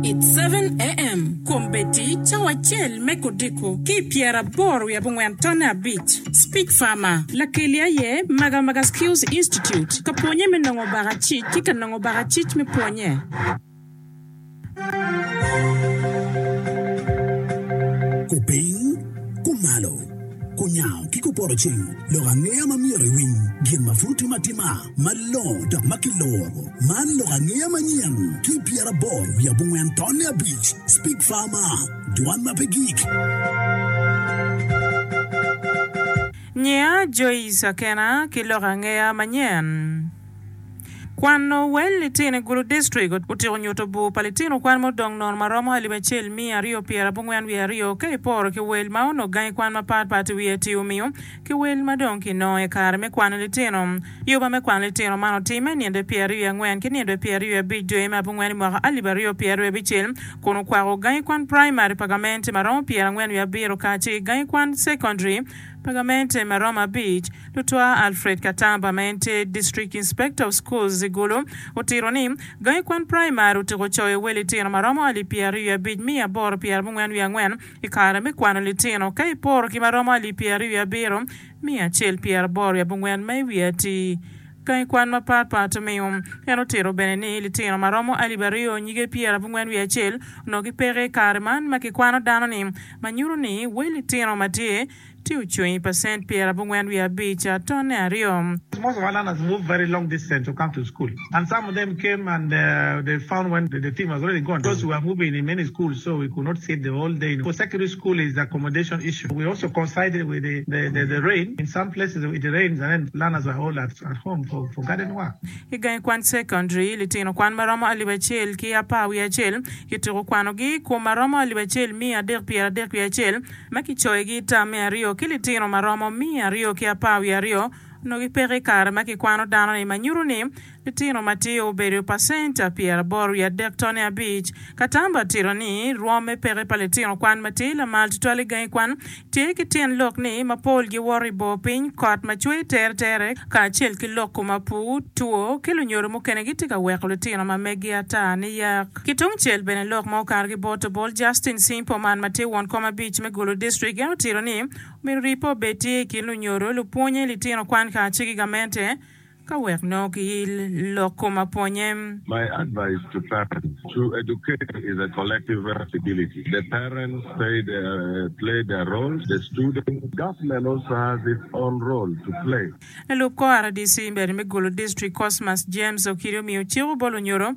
It's seven AM Kombeddi cawa acel me kodiko ki i pyera aboro wiye abongwen tonne abic Speak Farmer Lakeli aye Maga Maga Skills Institute ka pwonye me nongo baka cic ki ka nongo baka cic me pwonye. Kupiny, kumalo, kunyango ki kupoto ceng lok angeya ma myero iwiny gin ma pud timo atima. Malongo dok ma kiloro. Man lok angeya manyen ki pyera aboro wiye abongwen tonne abic. Speak Farmer, Dwan ma pe gik. Nyiya Joyce Akena ki lok angeya manyen Kwano wel litino i Gulu District otyeko nyuto bur pa litino kwan ma odong nono ma romo alip acel miya aryo pyera abongwen wiye aryo ka iporo ki wel ma onongo gangi kwan mapat pat i wiye ti omiyo ki wel ma dong kinongo i kare me kwano litino. Yoba me kwano litino man otimme i ninde pyeraryo wiye angwen ki ninde pyeraryo wiye abic dwe me abongwen i mwaka alip aryo pyeraryo abicel, kun okwako gangi kwan praimari pa gamente ma romo pyerangwen wiye abiro kacel ki gangi kwan cekondaria pa gamente ma romo abic. Lutwaa Alfred Katamba ma en tye District Inspector of Schools i Gulu otito ni, Gangi kwan praimari otyeko coyo wel litino ma romo alip pyeraryo wiye abic miya aboro pyerabongwen wiye angwen, I kare me kwano litino, ka iporo ki ma romo alip pyeraryo wiye abiro, miyo acel pyeraboro wiye abongwen ma i wiye atir. Gangi kwan mapat pat omiyo, en otito bene ni litino ma romo alip aryo nyige pyerabongwen wiye acel onongo gipeke i kare man ma kikwano dano-ni, ma nyuto ni we litino ma tye Ci ocung i pacent pyerabongwen wiye abic, tonne aryo. I gangi kwan cekondaria, litino kwan ma romo alip acel ki apar wiye acel kituko kwanogi i kom ma romo alip acel miya adek pyeradek wiye acel. ma kicoyogi i tam me aryo ki litino ma romo miya aryo ki apar wiye aryo onongo gipeko i kare ma kikwano dano-ni, ma nyuto ni litino matir obedo pacenta pyeraboro wiye adek tone abic. Katamba otito ni, rwom me peke pa litino kwan matir lamal tutwal i gangi kwan tye ki tyen lok ni mapol giwoto i bor piny, kot ma cwer teretere, kacel ki loko mapwu, two, ki lunyodo mukene gitye ka weko litino ma megi ata niyak. Ki tung cel bene lok ma okato ki bot obol Justin Cing Poman ma tye won kom abic me Gulu District en otito ni omyero rii pe obed tye i kin lunyodo, lupwonye, litino kwan kace ki gamente ka wek nongo ki lok kom apwonye. My advice to parents, to educate is a collective responsibility, the parents pay their play their roles, the students, government also has its own role to play. Lalub kor RDC bene me Gulu District Cosmas James Okidi omiyo cik obol onyodo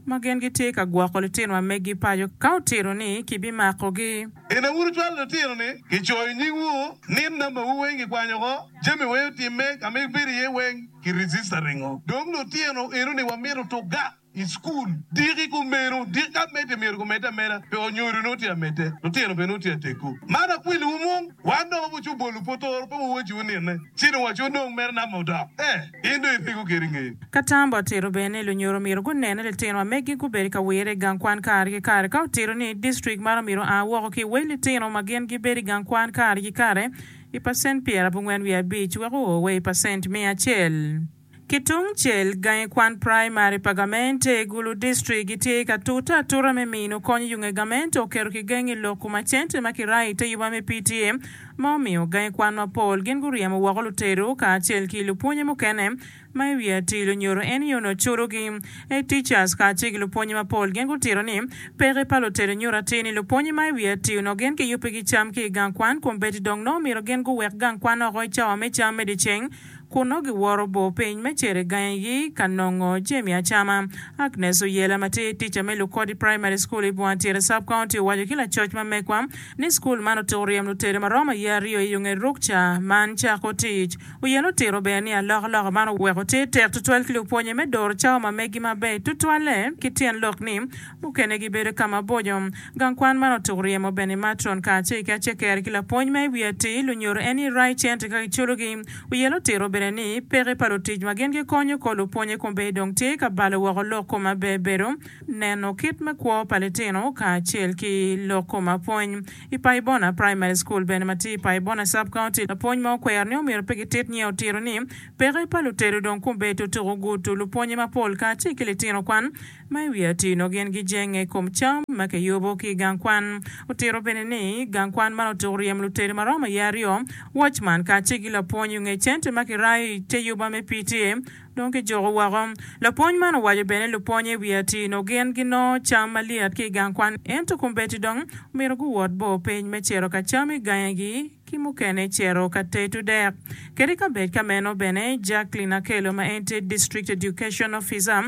ma gin gitye ka gwoko litinowa megi paco ka otito ni kibimakogi. Bene wun wucwalo litino ni kicoyo nyingwu ni nambawu weng kikwanyo oko, jami weng otimme ka ma ibedo iye weng ki register ringo. Dong lutino eno ni wamito tukga i cukul diki kumeno diki ka medde myero gumedde ameda pe onyodo nongo tye amedde lutino bene nongo tye ateggu. Man akweliwu mung wan dong wabuco bolu pwotoro pe wuwaciwu nine ci dong waco nong mere namba odok eh. in dong ipiko keri ngeye. Ka tam bot tito bene, lunyoro myero gunen ni litino ma megi gubedo ka wire i gang kwan kare ki kare. Ka otito ni distrik maro myero oa woko ki wel litino ma gin gibedo i gang kwan kare ki kare i pacent pyerabongwen wiye abic wek oo wa i pacent miya acel. Ki tung cel, gangi kwan praimari pa gamente i gulu distrik gitye ka tute atuta me mino kony i yunge gamente oketo kigengi lok kuma cente ma kirayo i te yuba me PTA ma omiyo gangi kwan mapol gin guryemo woko lutedo kacel ki lupwonye mukene ma i wi atir lunyodo en ni onongo curogi. Head teachers kacel ki lupwonye mapol gin gutito ni peke pa lutedo nyuto atir ni lupwonye ma i wi atir onongo gin kiyubbigi cam ki i gang kwan kun bedi dong nongo omyero gin guwek gang kwan oko i cawa me cam me dyeceng kun nongo giworo bor piny me cito i gangigi ka nongo jami acama. Agnes Oyela ma tye tica me Lukodi Primary School i Bwantyere Sub-County owaco ki lacoc ma megwa ni skul man otuko ryem lutere ma romo aye aryo i onge ruk ca man cako tic. Oyela otiro bene ni alokaloka man oweko tye tek tutwal ki lupwonye me doro cawa ma meggi maber tutwalle ki tyen lok ni mukene gibedo ka maboco Gang kwan man otuko ryemo bene matron kacel ki aceker ki lapwony ma i wi atir lunyoro en ni Rai Chentre ka kiculogi. Wiye lutiro bene ni peke pa lutic ma gin gikonyo kor lupwonye kombeddi dong tye ka balo woko lok koma ber bedo neno kit me kwo pa litino kacel ki lok koma pwony. I Paibona Primary School bene ma tye i Paibona Sub County, lapwony ma okwero ni omyero pe gitit nyiye otiro ni peke pa lutedo dong kombeddi tutuko gudo lupwonye mapol kacel ki litino kwan Ma i wi atino, gin gijenge i kom cam ma kiyubo ki i gang kwan. Otito bene ni, gang kwan man otuko ryem lutedo ma romo iye aryo, wocman kacel ki lapwony onge cente ma kirayo i te yuba me PTA dong kijuko woko. Lapwony man owaco bene ni lupwony i wi atino gin ginongo cam malyet ki i gang kwan ento kombeddi dong omyero guwot bor piny me cito ka cam i gangegi. ki mukene cito ka teto dek. Kede kabed ka meno bene, Jacqueline Akello ma en tye District Education Officer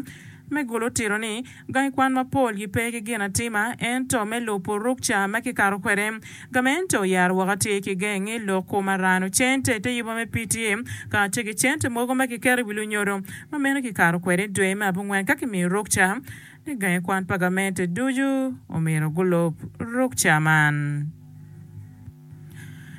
me Gulu tito ni, Gangi kwan mapol gipe ki ginatima ento me lubo rukca ma kikato kwede, gamente oyaro woko atir ki gengi lok ku marano, cente, te yubo me PTA, kacel ki cente mogo ma kiketo i wi lunyodo ma meno kikato kwede dwe me abongwen ka kimiyo rukca. I gangi kwan pa gamente ducu omyero gulub rukca man.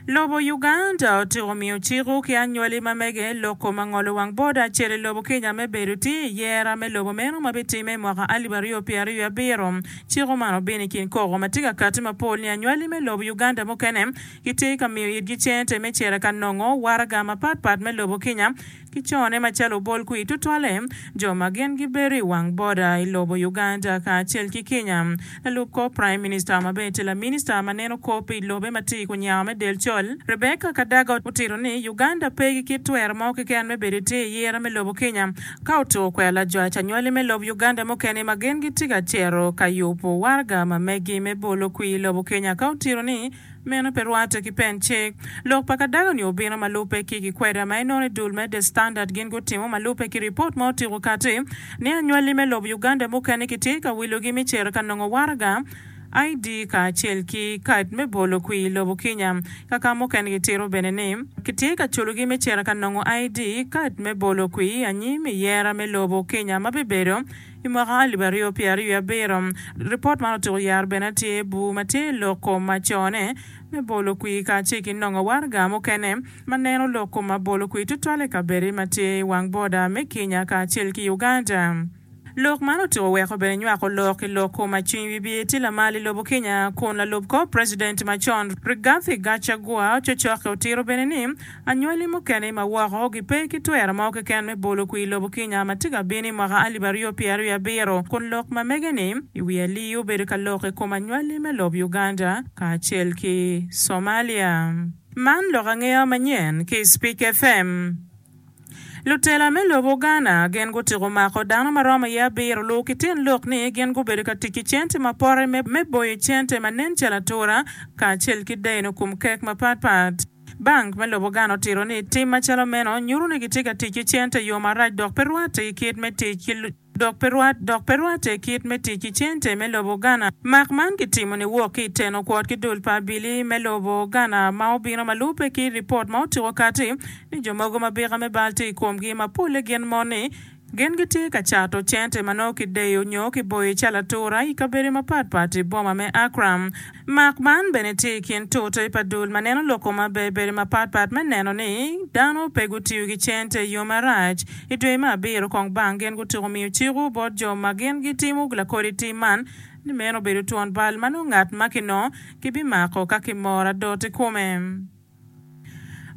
Lobo Uganda otyeko miyo ciko ki anywali ma mege loko ma ngolo wang boda acel i lobo Kenya me bedo tye i yera me lobo meno ma bitimme i mwaka alip aryo pyera ryo abiro. Ciko man obino i kin koko ma tye ka kati ma pol ni anywali me lobo Uganda mukene kitye ka miyo itgi cente me cito ka nongo waraga mapat pat me lobo Kenya Ki cone macalo obol kwir tutwalle, jo ma gin gibedo i wang boda i lobo Uganda kacel ki Kenya, lalub kor Praim Minista ma bene tye laminista ma neno kop pi lobe ma tye i kunyako me del col, Rebecca Kadaga otito ni Uganda pe ki kit twero mo keken me bedo itir i yere me lobo Kenya ka otur kwero lajwac anywali me lob Uganda mukene ma gin gitye ka cito ka yubo waraga ma megi me bolo kwir lobo Kenya ka otito ni Meno pe rwatte ki pen cik. Lok pa kadaga-ni obino ma lubbe ki gikweda ma inono i dul me The Standard. Gin gutimo ma lubbe ki ripot ma otyeko kati ni anywali me lobo Uganda mukene kitye ka wilogi me cito ka nongo waraga, ID, kacel ki kad me bolo kwi i lobo Kenya. Kaka mukene gitito bene ni kitye ka culogi me cito ka nongo ID, kad me bolo kwi, anyim i yera me lobo Kenya ma bibedo. I mwaka alip aryo pyera wiye abiro, ripot man otyeko yaro bene tye bur ma tye i lok kom ma cone me bolo kwir kacel ki nongo waraga mukene ma neno lok kom ma bolo kwir tutwal i kabedde ma tye i wang boda me Kenya kacel ki Uganda. Lok man otyeko weko bene nywako lok i lok kom ma cwiny wibye tye lamal i lobo Kenya kun lalub kor president macon Rigathi Gachagua ococokke otiro bene ni Anywali mukene i ma woko gipe ki twero mo keken me bolo kwir lobo kinya ma tye ka bino i mwaka alip aryo pyera aryo abiro, kun lok ma mege ni i wi alii obedo ka lok i kom anywali me lob Uganda kacel ki Somalia. Man lok angeya manyen ki i Spik FM. Lutela me lobo Uganda gin gutiko mako dano ma romo iye abiro lu ki tyen lok ni gin gubedo ka tic ki cente ma pote me boyo cente ma nen calo atura kacel ki deno kom kek mapat pat. Bank me lobo Ghana otito ni tim macalo meno nyuto ni gitye ka tic ki cente i yo marac dok pe rwatte ki kit me tic ki dok pe rwat dok pe rwatte kit me tic ki cente me lobo Ghana. Mak man kitimo niwok ki i teno kwot ki dul pa abili me lobo Ghana ma obino ma lubbe ki ripot ma otuko kati ni jo mogo ma bika me bal tye i komgi ma polle gin moni Gin gitye ka cato cente ma nongo kideyo nyo kiboyo calo atura i kabedo mapat pat i boma me Accra. Mark man bene tye i kin tute pa dul ma neno loko ma ber bedo mapat pat me neno ni dano pe gutiyo ki cente i yo marac. I dwe me abiro kong bang gin gutyeko miyo ciko bot jo ma gin gitimo lakodi tim man ni meno obedo twon bal ma nongo ngat ma kinongo kibimako ka kimor adot i kome.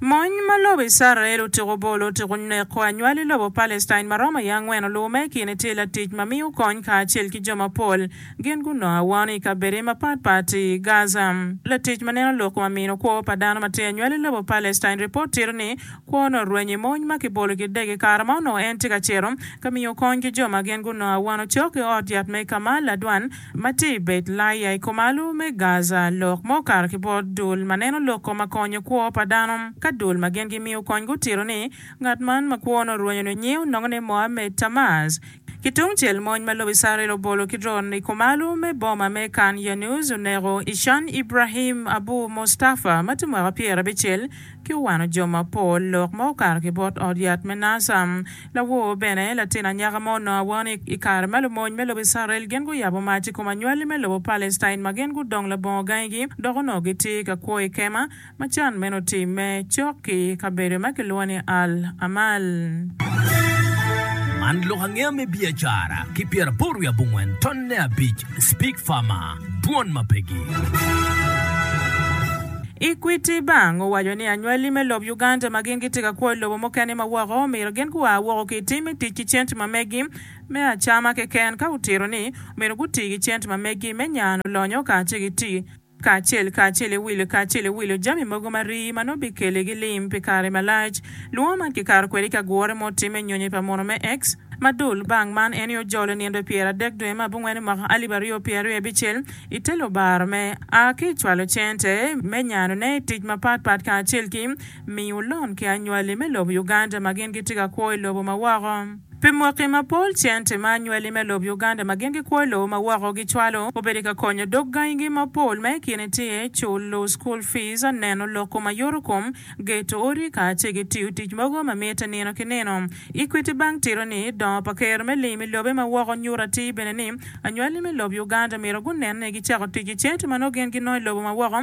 Mony ma lobo Icrael otyeko bolo otyeko neko anywali lobo Palestine ma romo iye angwen olume. I kine tye latic ma miyo kony kacel ki jo mapol. Gin gunongo awano i kabedde mapat pat i Gaza. Latic ma neno lok ma mino kwo pa dano ma tye i anywali lobo Palestine ripot tito ni kwone orwenyo i mony ma kibolo ki dege i kare ma onongo en tye ka cito ka miyo kony ki jo ma gin gunongo awano cok i ot yat me Kamal adwan ma tye i Bet-laiya i komalo me Gaza lok ma okato ki bot dul ma neno lok koma konyo kwo pa dano. Ka dul ma gin gimiyo kony gutito ni ngat man ma kwone orwenyo nyo nyiu nongo ne Mohammed Tamaz, ki tungcel mony ma lobo Icrael obolo ki dron i komalo me boma me Khan Younus oneko Ishan Ibrahim Abu Mustafa ma tye mwaka pyerabicel ki owano jo mapol lok ma okato ki bot ot yat me naca. Lawor bene, latin anyaka ma onongo awor ni i kare ma lumony me lobo Icrael gin guyabo mac i kom anywali me lobo Palestine ma gin gudong labongo gangigi dok onongo gitye ka kwo i kema ma can meno otimme cok ki i kabedo ma kilwongo ni Al Amal. Man lok angeya me biacara ki pyeraboro wiye abongwen tonne abic. Speak Farmer, Dwon ma Pegi. Equity Bank owaco ni anywali me lob Uganda ma gin gitye ka kwo i lobo mukene ma woko omyero gin gua woko ki i tim me tic ki cente ma meggi me acama keken ka otito ni omyero guti ki cente ma meggi me nyano lonyo kacel ki tic kacel kacel iwilo kacel iwilo jami mogo ma rii ma nongo bikele gi lim pi kare malac. Lwongo man kikato kwede i ka gure ma otimme nyonyo pa mono me X. Ma dul bang man en i ojolo nino pyera adek dwe ma abungwen i mwaka alip aryo pyer aryo abicel i te lubaro me a ki cwalo cente me nyano ne i tic ma pat pat kacel ki Miyo lon ki anywali me lobo Uganda ma gin gitye ka kwo i lobo ma woko. Pi mwaki mapol, cente ma anywali me lobo Uganda ma gin gikwo i lobo ma woko gicwalo obedo ka konyo dog gangigi mapol ma i kine tye, culo school fees, neno lok kom ayoro kom, geto odi kacel ki tiyo tic mogo ma mitte nino ki nino. Equity Bank tito ni, Dongo pa Ker me lim i lobe ma woko nyuto atir bene ni anywali me lobo Uganda myero gunen ni gicako tic ki cente ma nongo gin ginongo i lobo ma woko,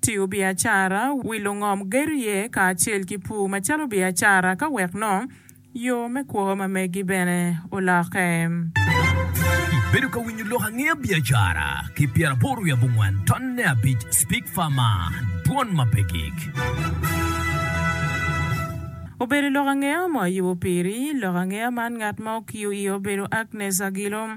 Tiyo biacara, wilo ngom gedo iye kacel ki pur macalo biacara ka wek nong yo me kwo ma megi bene olokke. Ibedo ka winyo lok angeya biacara ki pyeraboro wiye abongwen tonne abic Speak Farmer, Dwon ma pe gik. Obedo lok angeya mo ayubo piri. Lok angeya man ngat ma okiyo iye obedo Agnes Agilo.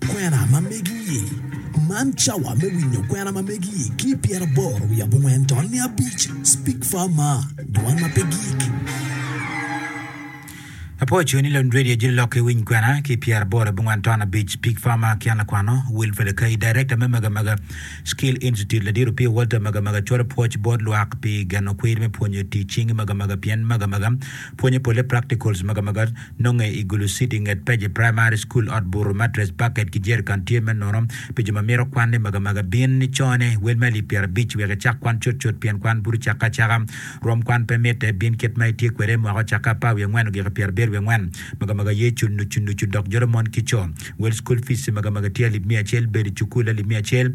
Kwena ma megi-i. Man cawa me winyo kwena ma megi-i ki i pyeraboro wiye abongwen tol niya abic. Speak Far Ma, Dwan ma pe Gik. Apoco ni Lon Radio jito lok ki winy kwena ki i pyeraboro abongwen tol abic. Speak Far Ma, Ki an lakwano, Wilfred Akai, Darekta me Magamaga Skill Institute, Ladit Opio Walter Magamaga cwalo pwoc bot lwak pi geno kwir me pwonyo tic cing i Magamaga pien Magamaga pwonyo polle practicals Magamaga, Nonge i Gulu City i nget Page Primary School, ot buto, matress, bucket ki jerrican tye me nono pi jo ma mito kwanne magamaga. Bin ni cone, wel me alip pyerabic, wek icak kwan cutcut pien kwan buto cakke acaka. Rwom kwan pe mitte, bin kit ma itye kwede mwaka ocakke apar wiye angwen ogiko pyera abiro wiye angwen. Magamaga ye cul nucunucu dok jolo mon ki co. Wel school fees magamaga tye alip miya acel, bedo i cukul alip miya acel,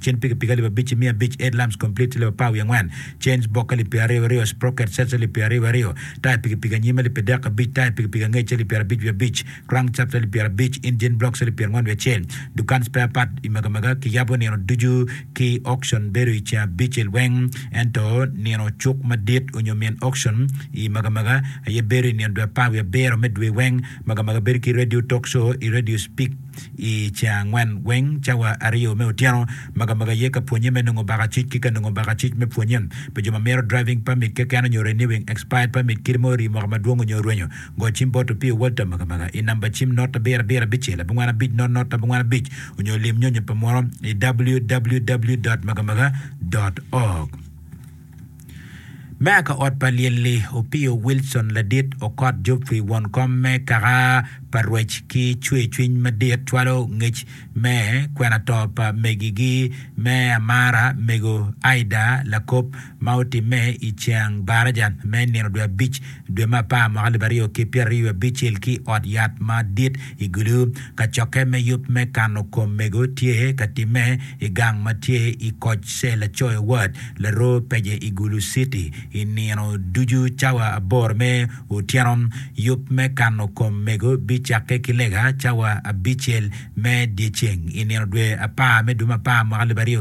Cen pikipiki alip abic ki miya abic, headlamps complete alip apar wiye angwen, chains bokke alip pyeraryo aryo, sprocket sets alip pyeraryo wiye aryo, taya pikipiki anyim alip adek abic, taya pikipiki angec alip pyerabic wiye abic, crankshaft alip pyerabic, engine blocks alip pyerangwen wiye acel. Dukan spare part i Magamaga kiyabo nino ducu ki auction bedo i ceng abicel weng ento nino cuk madit onyo min auction i Magamaga aye bedo i nino dwe apar wiye abiro me dwe weng. Magamaga bedo ki radio talk show i radio speak. I ca angwen weng, cawa aryo me otyeno, magamaga aye ka pwonnye me nongo baka acuc ki ka nongo baka acuc me pwonnye. Pi jo ma mito driving permit keken onyo renewing expired permit kit ma orii mwaka madwong onyo orwenyo, go cim bot Opio Walter magamaga i namba cim not abiro abiro abicel abongwen abic not not abongwen abic onyo lim nyonyo pa muno i www. Magamaga. Org. Meya ka ot pa lyel-li, Opiyo Wilson Ladit Okot Jopri won kom me kaka pa rwec ki cwer cwiny madit cwalo ngec me kwena to pa megigi me amara mego Aidah Lakob ma otimme i ceng baraja me nino dwe abic Dwe me apar mwaka alip aryo ki pyeraryo abicel ki ot yat madit i Gulu, kacokke me yub me kano kom mego tye ka timme i gang ma tye i koc se lacoyo wat laro pece i Gulu City. I nino ducu cawa aboro me otyeno, yub me kano kom mego bicakke ki lega cawa abicel me dyeceng i nino dwe apar me dwe me apar mwaka alip aryo